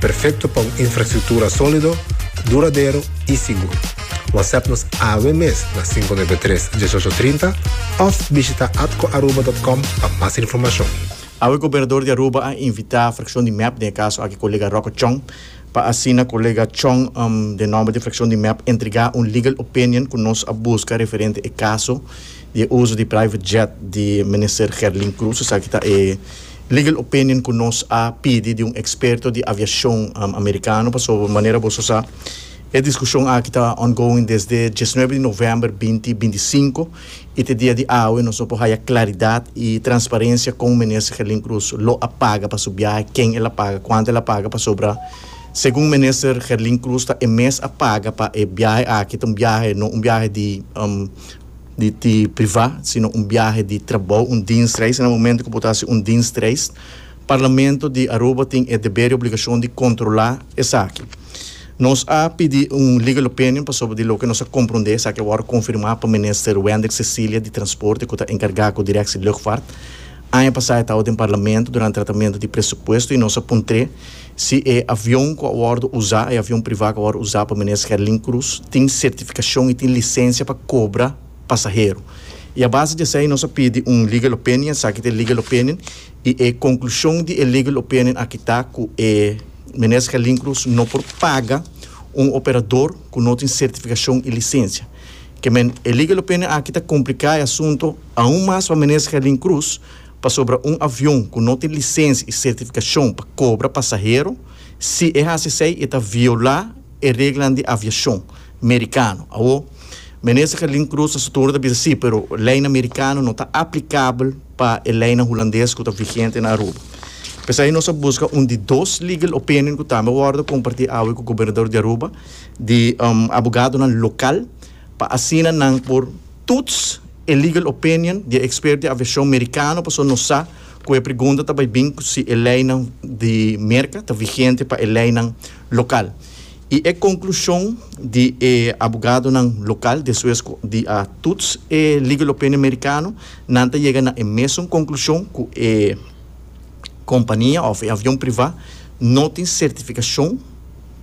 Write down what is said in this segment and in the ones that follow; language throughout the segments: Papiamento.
Perfecto pa un infrastructura solido, duradero y sigur. Whatsapp nos awe mes na cinco nuebe tres, diesocho trinta of bishita atcoaruba.com pa mas informacion. Awe Gobernador di Aruba a invita fraccion di mep, den e caso aki colega Rocco Chong, pa asina colega Chong den nomber di fraccion di mep entrega un legal opinion cu nos a busca referente e caso di e uso di private jet di Minister Gerlin Cruz esaki ta e Legal opinion ku nos a pidi di un eksperto di aviashon amerikano pasobra manera boso sa e diskushon aki ta ongoing desde diesnuebe di novèmber binti binti sinku i te dia di awe nos no por haya klaridat i transparensia kon Minister Gelin Cruz lo a paga pa su biahe, ken el a paga, kuantu el a paga pasobra segun Minister Gelin Cruz ta e mes a paga pa e biahe aki ta un biahe no un biahe di. di ti privá, sino un biahe di trabou, un dienstreis. Na momento ku bo ta hasi un dienstreis, Parlamento di Aruba tin e deber i obligashon di kontrolá esaki. Nos a pidi un legal opinion pasobra di loke nos a komprondé, esaki a wòrdu konfirmá pa Minister Wendrick Cecilia di Transporte ku ta enkargá ku Direksie Lugfart. Aña pasá e tawe den Parlamento durante tratamentu di presupuesto i nos a puntr'é, Si e avion ku a wòrdu usá, e avion privá ku a wòrdu usá pa Minister Gerlin Cruz, tin sertifikashon i tin lisensia pa kobra pasahero. I a base di esei nos a pidi un legal opinion, esaki ta e legal opinion, i e konklushon di e legal opinion aki ta ku e Minister Gerlin Cruz no por paga un operador ku no tin sertifikashon i lisensia. Ke men, e legal opinion aki ta kompliká e asunto aun mas pa Minister Gerlin Cruz, Pasobra un avion ku no tin lisensia i sertifikashon pa kobra pasahero, si e hasi esei e ta violá e reglanan di aviashon merikano. Awor, Minister Gelin Cruz ta sutur ta bisa sí, pero leinan merikano no ta aplikabel pa e leinan hulandes ku ta vigente na Aruba. P'esei nos a buska un di dos legal opinion ku tambe a wòrdu kompartí awe ku Gobernador di Aruba, di abogadonan lokal, pa asina nan por tuts E legal opinion di e expert di aviacion Mericano pasobra nos sa cu e pregunta ta bay bin cu si e leynan di Merca ta vigente pa e leynan local. Y e conclusion di e abogadonan local despues cu di a toets e legal opinion Mericano, nan ta yega na e mesun conclusion cu e compania of e avion priva no tin certificacion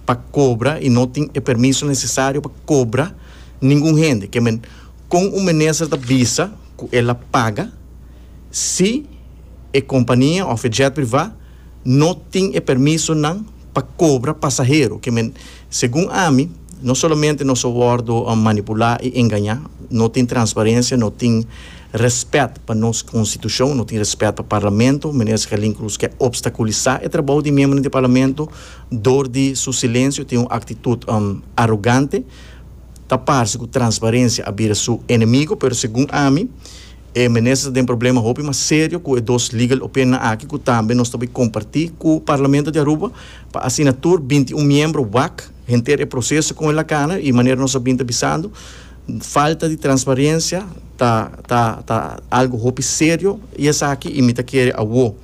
pa cobra y no tin e permiso necesario pa cobra ningun hende. Kon un minister ta bisa ku el a paga si e kompania òf e jet privá no tin e permisonan pa kobra pasahero? Ke men, segun ami, no solamente nos a wòrdu manipulá i engañá, no tin transparensia, no tin rèspèt pa nos konstitushon, no tin rèspèt pa parlamento. Minister Carlin Cruz ke opstakulisá e trabou di miembronan di parlamento dor di su silensio, tin un aktitut arogante. Ta parse cu transparencia a bira su enemigo, pero segun ami e Minister ta den problema hopi mas serio cu e dos legal opinionnan aki cu tambe nos ta bay comparti cu Parlamento di Aruba pa asina tur binti un miembro wak henter e proceso con e Lacana y manera nos a bin ta bisando falta di transparencia ta ta ta algo hopi serio y esaki y mi ta kere awo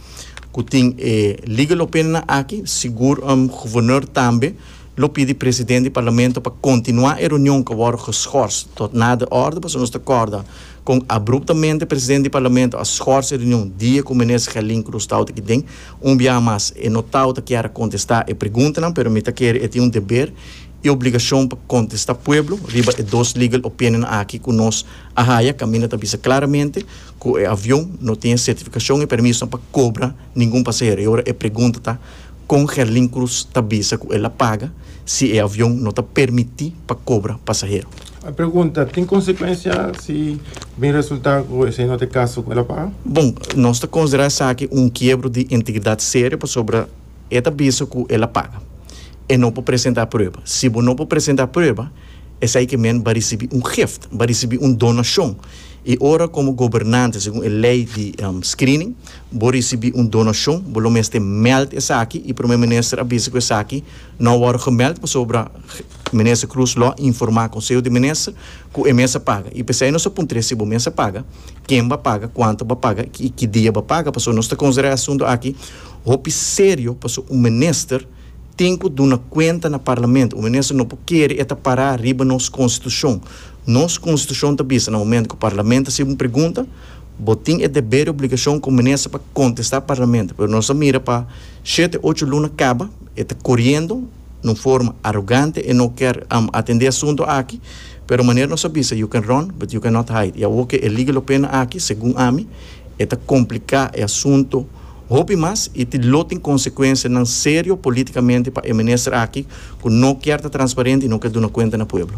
cu tin e legal opinionnan aki sigur Governor tambe Lo pidi presidente di parlamento pa continua e reunion cu a worde geschors tot na de orde pasobra nos ta corda con abruptamente presidente di parlamento a schors e reunion dia cu Minister Gelin Cruz tawata kinden. Un biaha mas e no tawata kier a contesta e preguntanan pero mi ta kere e tin un deber y obligacion pa contesta pueblo riba e dos legal opinionnan aki cu nos a haya. Caminda ta bisa claramente cu e avion no tin e certificacion y permisonan pa cobra ningun pasahero y ora e pregunta ta. Kon Gerlin Cruz ta bisa ku el a paga si e avion no ta permití pa kobra pasahero? E pregunta tin konsekuensia si bin resultá ku esei no ta e kaso ku el a paga? Bon, nos ta konsiderá esaki un kiebro di integridat serio pasobra e ta bisa ku el a paga. E no por presentá prueba. Si bo no por presentá prueba, esei ke men ba risibí un gift, ba risibí un donashon. I ora komo gobernante, segun e lei di screening, Bo risibi un donashon, bo lo mester mèld esaki i Prome Minister a bisa ku esaki no a wòrdu gemèld pasobra Minister Croes lo a informá Konseho di Minister ku e mes a paga. I p'esei nos a puntr'é si bo mes a paga, ken bo a paga, kuantu bo a paga i ki dia bo a paga pasobra nos ta konsiderá e asuntu aki hopi serio pasobra un minister tin ku duna kuenta na Parlamento. Un minister no por kere e ta pará riba nos Konstitushon. Nos Konstitushon ta bisa na momentu ku Parlamento a hasiba un pregunta, Bo tin e deber i obligashon ku minister pa kontestá parlamento, pero nos a mira pa shete ocho luna kaba e ta koriendo na un forma arogante, e no kèr atendé asunto aki, pero manera nos a bisa you can run but you can not hide, i awor ku e legal opinion aki, segun ami, e ta kompliká e asunto hopi mas i tin lo tin konsekuensianan serio polítikamente pa e minister aki ku no kèr ta transparente i no kèr duna kuenta na pueblo.